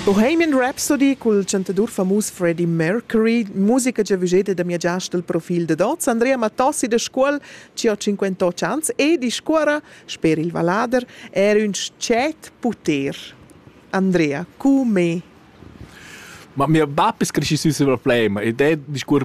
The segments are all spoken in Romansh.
Bohemian Rhapsody cul chantadur famus Freddie Mercury, musica che vugete da mia giast il profil dad oz, Andrea Mattossi da Scuol, ci ho 58 ans e discuora, sper il vallader, er ün tschet puter. Andrea, cu me? Ma mio bap es cresci sü sul problem ed è discuor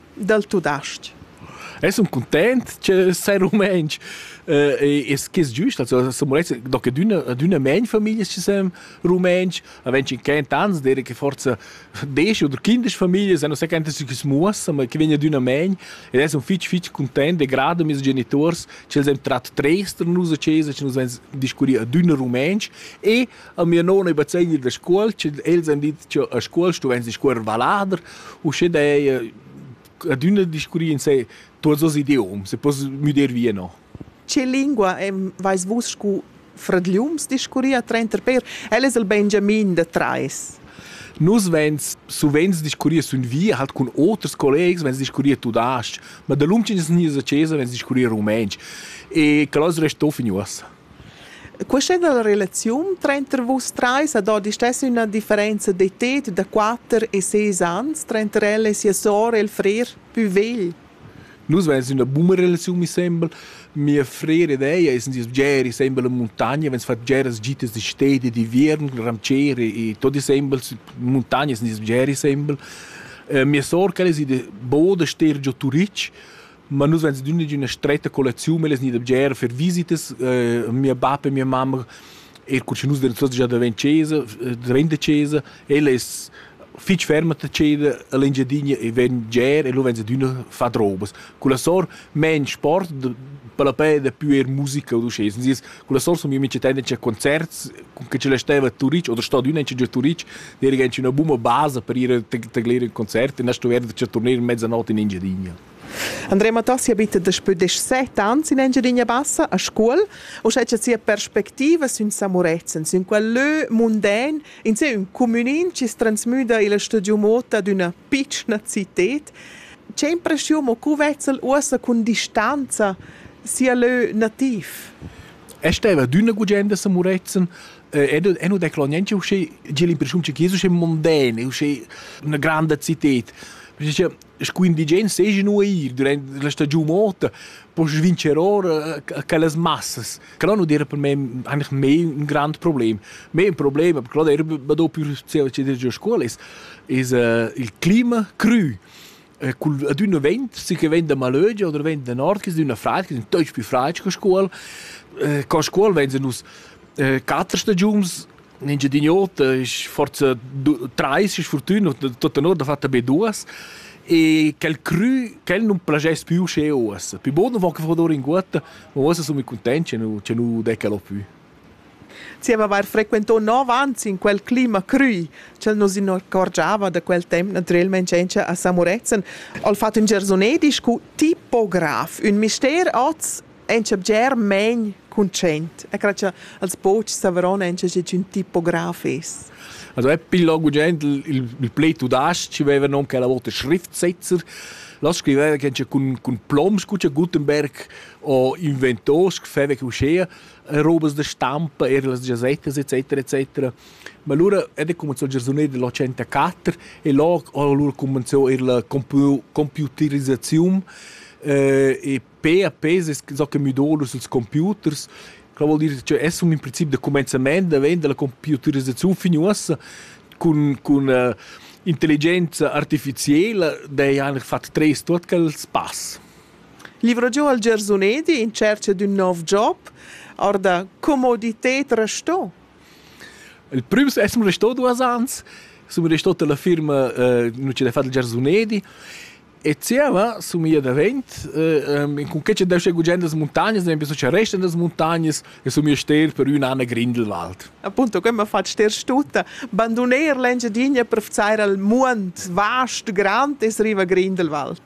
dal tudastg. Es un content che sei rumentsch eh, es che es giust also so morets do che d'una d'una men famiglia ci sem rumentsch a wenn ci kent ans dire che forza desch oder kindisch famiglia se no se kent si ches muoss ma che vegna d'una men ed es un fitch fitch content de grade mis genitors ci sem trat trester nus a chesa ci nus ven discurri a d'una rumentsch e A mia nona bazzegna da scuol, sche els han dit che a scuol stuvain discuorrer vallader, uschè daja adüna discurri insé tuots dos idioms e poss müder via no. Che lingua vais vus scu fradgliums discurrir trenter per? El es il Benjamin da trais. Nus vens suvenz discurrir sun via halt cun oters collegs, vens discurrir tudas-ch, ma da lunch in snia a chesa vens discurrir rumentsch e que as resta fin uossa. Questa è la relaziun tranter vus trais ad odi stess üna differenza d'età da quatter e seis ans tranter ella e sia sora e il frer pü vegl. Nus vains üna buna relaziun mi sembel. Mia frera ed ella sun sieus bgeri sembel in muntagna, vegns fat bgeras gitas da stedi e d'inviern cul ramcier e tot e sembel in muntagna sun sieus bgeri sembel. Mia sora quella es ida bod a ster giò Turitg Ma nus vegns d'üna d'üna stretta collecziun, ellas gnida bger fer visitas, mia bap e mia mamma, eir cur cha nus devan tuots già davent chesa, davent da chesa, ella es fich ferma da ceder a l'Engiadina e ven bger e lu vegns adüna fat robas. Culla sor main sport, palapè dapü eir musica od uschè. Sün sieus culla sor sun gnü mincha temp a concerts, cun che ch'ella staiva a Turic oder sto adüna inchün giò a Turic, d'eira auncha üna buna basa per ir a taglir ün concert e na stuvair cha turner in mezzanot in Engiadina. Andrea Matassi abita daspö desset ans in Engiadina Bassa a Scuol. Uschè cha sia perspectiva sün Samurezen, sün quel lö munden, in sé ün cumünin chi transmüda illa studiu mot ad üna pitschna cited, che impreschiun ho cu vezzel uossa cun distanza sia lö nativ? E steva d'üna gugenda a Samurezen ed è nu declaro niente usché, gi l'impreschiun che Jesu è monden, è usché üna granda cited. Sco indigen seigi nua ir durant la stagiun ota, poss vincer ora quellas massas. Quello non era per me eigentlich mehr ein grand Problem. Mehr ein Problem, aber quello era da più già scuola ist, ist uh, il clima cru. Eh, col adüna vent, si che vent da malögia oder vent da nord, che adüna fraid, che è più fraid che scuola. Eh, con scuola venzen nus eh, quattro stagiuns in Engiadin'Ota ist forza drei ist fortuna tutta nur da fatta be duas e quel cru quel non plagess più che oas più buono va che fodor in guata ma oas sono contenti che nu che nu decalo più Zieva avair frequentò nov ans in quel clima crui, ch'el nos incorgiava da quel temp naturalmente a Samuretzen, al fat ün gersonedi scu tipograf, ün mister oz Encha bger main conscient e cre cha els pochs savran encha schi ün tipograf es. Also è più lungo gent il, il play tudasc, aveva nom che la volta Schriftsetzer. Là scriveva che c'è con, con ploms, con c'è Gutenberg o inventos, che feva che uscea, robes de stampa, er las gazettes, etc, etc. Ma allora è cominciato il giornale dell'84 e là allora cominciò er la computerizzazione eh, e pe a pes es so che müdolus ils computers Quella vuol dir che es un in princip da comenzament da vend dalla computerisaziun fin uossa cun cun uh, intelligenza artificiela dei han fat tres tuot quels pass. Livro giù al Gersunedi in cerca d'un nov job, orda comoditet resto. Il primo è un resto due ans, sono resto della firma uh, non c'è da fare il Gersunedi E zieva somia davent, in cun che deu sche gugent das muntagnas, ad esempio, so che restan das muntagnas e somia ster per üna anna Grindelwald. Appunto, come ha fatto ster tutta, bandoner l'Engiadinha per vzare al muond vast grand e arriva Grindelwald.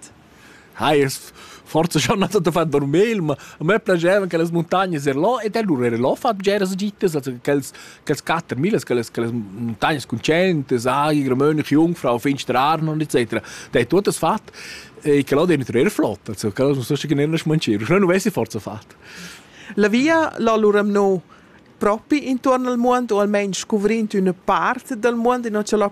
Hai, es forse schon nato da fan dormir, ma a me piaceva che le montagne er là e da loro era là fatto giras gittes, also che els Quels quatter millas, quelles, quelles montagnas concentes, Agir, Mönch, Jungfrau, Finster Arnon, etc. Der hat das fat. E che l'ho dentro er flott, also che non so che ne ne schmancir. Non avessi forza fat. La via l'allora no propi intorno al mondo o almeno scoprendo una parte del mondo e non ce l'ho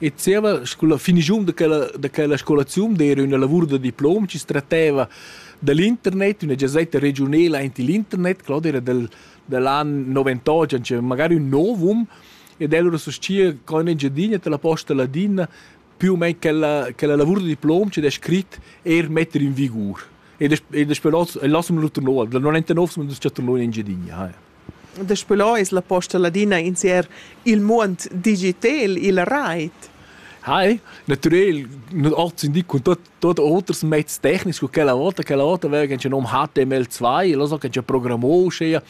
E zieva scoula finischun da quella da quella scolaziun d'eira üna lavur da diplom chi tratteva da l'internet, üna giazetta regiunela aint il internet, Claudia era del dal an noventocha, nc'era magari ün nouv um ed el oura suschia co in Engiadina t'la posta ladina più u main quella quella lavur da diplom chi'd es scrit eir metter in vigur. Ed es ed es però el lassa'm l'oter nouv, dal 99 sun duos chattà nouv in Engiadina, haja. Daspö lo es la posta ladina insier il muond digitel illa rait. Hei, natürlich, nicht alt sind die und dort, dort Orders mit technisch, quella volta, quella volta wären schon um HTML2, lass sagen, programmieren,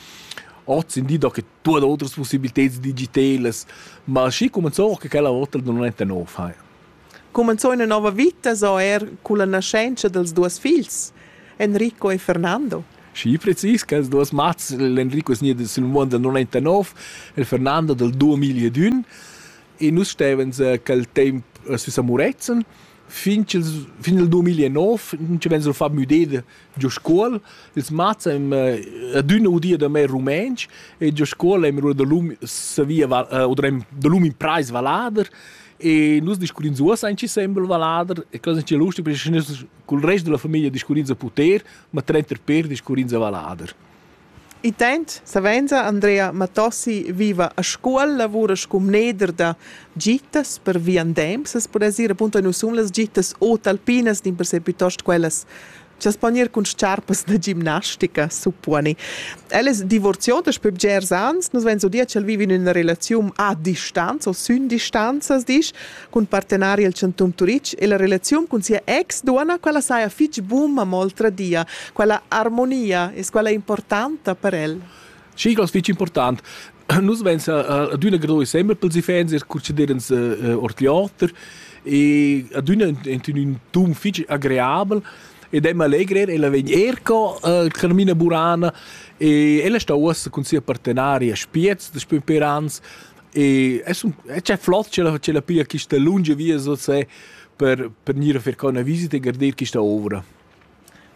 8 sind die da che tutte le altre possibilità digitali, ma si come so che quella volta non è 9 hai. Cumenzò ina nova vita sco er culla nascenzia dals duos figls, Enrico e Fernando. Schi precis quels duos mats, l'Enrico es gnit sül muond dal 99, il Fernando dal 2001 e nus stevans quel temp sü a Murezzan fin ch'ils fin il 2009 nun ci vegn sul far müder giu scuol. Ils mats ein adüna udia da me rumentsch e giu scuol ein da lum savia oder da lum in preis vallader e nus discurrins uossa in sembel vallader e cosa che lustig perché nus cul rest della famiglia discurrins a puter, ma trenter per discurrins a vallader. Intant savenza Andrea Matossi viva a Scuol, lavura sco mneder da gittas per viandems. As pudess ir appunto nus sun las gittas o talpinas, dimpersè piuttost quellas Chi'as pon ir cun s-charpas da gimnastica, supponi. El es divorzià daspö bgers ans. Nus vains udia ch'el vivi in üna relaziun a distanza o sün distanza, as disch. cun partenari el Chantun Turitg e la relaziun cun sia ex-duonna, quella saja fich buna, mo oltradia, quella armonia es quella importanta per el. Sì, das fich important. Nus vens adüna gro sempre pels iffaints e conceder ins ord l'oter e adüna in ün ton fich agreabel ed è allegrer, ella vegn er co uh, Carmina Burana e ella sta uossa cun sia partenaria Spiez de Sperans E es un e c'è flot c'è la c'è la pia quista lunga via so se per per gnir a fer co una visita e garder quista ovra.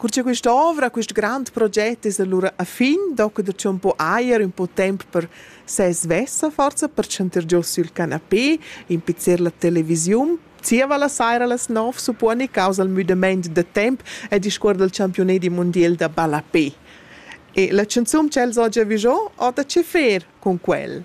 Cur cha questa ovra, quest grand proget es allura a fin, docu da un po ajer, un po temp per se svessa forza, per chanter giò sul canapé, impizzer la televisiun, zieva la saira las nov supponi causa il müdament de temp e discuor del campione di mondial da ballapé. E la canzun ch'els ho già vigiò, ho da che fer con quel?